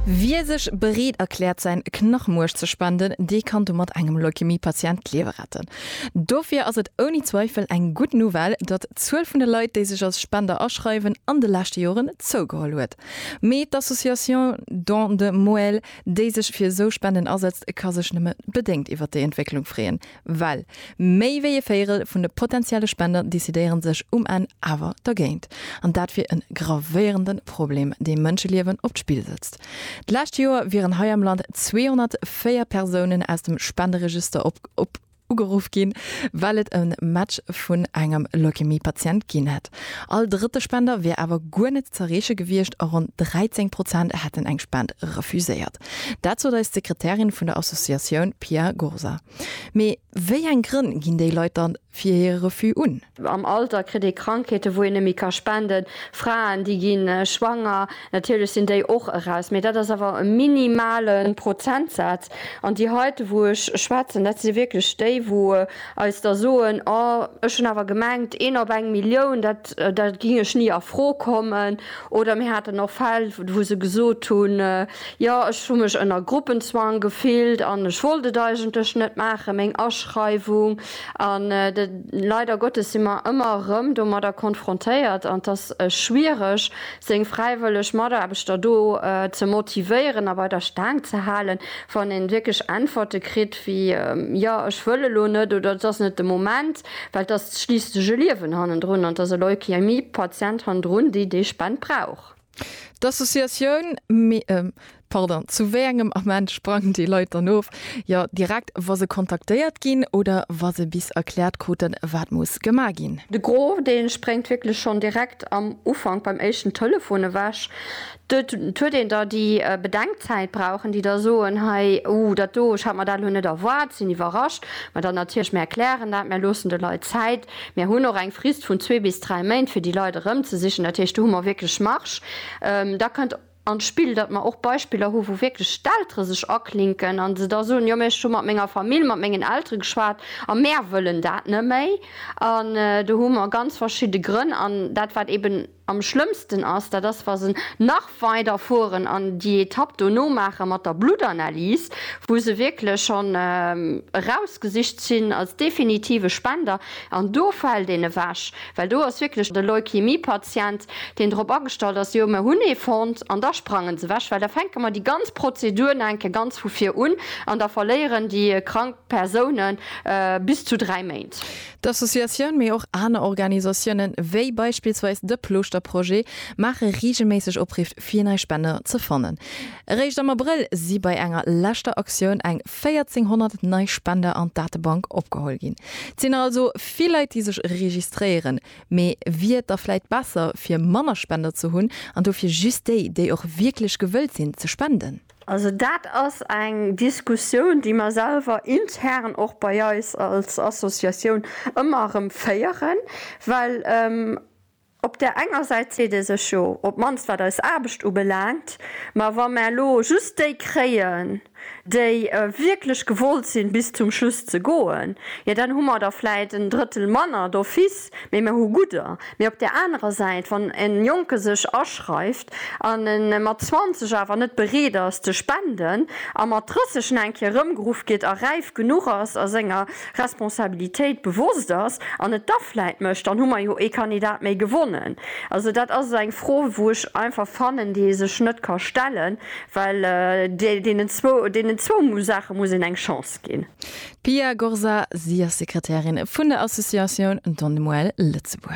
Wie sech bereet erkläert säin Knachmuerch ze spenden, dee kann domat engem Leukämie-Patient d'Liewe retten. Dofir ass et ouni Zweifel eng gutt Nouvelle, datt d'Zuel vun de Leit, déi sech als Spender aschreiwen, an de leschte Joren zougeholl huet. Mee d'Association Don de Moelle, déi sech fir esou Spenden asetzt, ka sech nëmme bedéngt iwwer déi Entwécklung freeën. Well méi wéi ee Véirel vun de potentielle Spender decidéiere sech um Enn awer dergéint. An dat wier e gravéierende Problem, dee Mënscheliewen op d'Spill setzt. D'lescht Joer wieren hei am Land 204 Persounen aus dem Spenderegister op ugeruff ginn, well et e Match vun engem Leukämie-Patient ginn hätt. All drëtte Spender wier awer guer net z'erreeche gewiescht a ronn 13 Prozent hätten eng Spend refuséiert. Dat sot eis d'Sekretärin vun der Associatioun Pia Gursa. Mee wéi eng Grënn ginn déi Leit dann fir hire Refus un? Am Alter kritt ee Krankheeten, wou een net méi ka spenden. Fraen, déi gi schwanger. Natierlech sinn déi och eraus, mee dat ass awer e minimale Prozentsaz. An déi heite, wou ech schwätzen, dat si wierklech déi, wou eis da soen, Oh, ech hunn awer gemengt, een op eng Millioun, dat gi ech ni a Fro kommen. Oder mir haten och Fäll, wou se gesot hunn, Jo, ech hu mech ënner Gruppenzwang gefillt an ech wollt et eigentlech net maachen, meng Aschreiwung. An leider Gottes si mer ëmmer erëm domadder konfrontéiert. An et ass schwiereg, seng fräiwëlleg Mataarbechter do ze motivéieren a bei der Staang ze halen, wann ee wierklech Äntwerte kritt wéi, Jo, ech wëll elo net oder et ass net de Moment. well et ass schliisslech e Liewen hannendrun an et ass e Leukämie-Patient hannendrun, déi déi Spend brauch. D'Associatioun, Pardon, zu wéi engem Ament sprangen déi Leit dann of? Jo, direkt wa se kontaktéiert ginn oder wa se bis erkläert kruten, wat muss gemaach ginn. De Gros, dee spréngt wierklech schonn direkt am Ufank beim éischten Telefon ewech. Dot huet een da déi Bedenkzäit brauchen, déi da soen, hei, uh, dat do, ech hat mer dat elo net erwaart, sinn iwwerrascht. Mä dann natierlech, mir erklären dat, mir loossen de Leit Zäit, mir hunn och eng Frist vun zwee bis dräi Méint, fir déi Leit erëmzesichen. Dat heescht, do hu mer wierklech Marge. Da kënnt an d'Spill, datt mer och Beispiller hu wou wierklech d'Eltere sech aklinken a se da soen, jo, mä ech hu mat menger Famill, mat mengen Eltere geschwat a mär wëllen dat net méi. An do hu mer ganz verschidde Grënn an dat wat eeben, Am schlëmmsten ass, dat ass wa se nach weider fueren an déi Etapp dono maache mat der Bluttanalys, wou se wierklech schonn erausgesicht sinn als definitive Spender, an do fält een ewech, well do ass wierklech de Leukemiepatient, deen drop agestallt ass, jo mir hunn ee fonnt, an da sprangen se ewech, well da fänke mer déi ganz Prozedur nach eng Kéier ganz vu vir un an da verléieren déi krank Persounen bis zu dräi Méint. D'Associatioun, mee och aner Organisatioune wéi beispillsweis de Plooschter Projet maache reegelméisseg Opriff fir nei Spender ze fannen. Eréischt am Abrëll si bei enger leschter Aktioun eng 1400 nei Spender an d'Datebank opgeholl ginn. Et sinn nach also vill Leit déi sech registréieren, mee wier et da vläit besser fir manner Spender ze hunn an dofir just déi, déi och wierklech gewëllt sinn ze spenden? Also dat ass eng Diskussioun, déi mer selwer intern och bei eis als Associatioun ëmmer erëm féieren, well op där enger Säit seet ee sech, jo, op d'mannst wat eis Aarbecht ubelaangt, mä wa mer elo just déi kréien, déi wierklech gewollt sinn, bis zum Schluss ze goen, jo dann hu mer der vläit en Drëttel manner d'office, mä mer hu gudder. Mä op där anerer Säit, wann e Jonke sech aschreift, an e mat 20 awer net bereet ass ze spenden a mat 30 nach eng Kéier erëmgeruff gétt a räif genuch ass a senger Responsabilitéit bewosst ass an et da vläit mécht, dann hu mer jo ee Kandidat méi gewonnen. Also dat ass eng Fro, wou ech einfach fannen, déi ee sech net ka stellen, well deenen zwou, deenen zwou Saache muss een eng Chance ginn. D'Pia Gorza, si ass Sekretärin vun der Associatioun Don Noël Lëtzebuerg.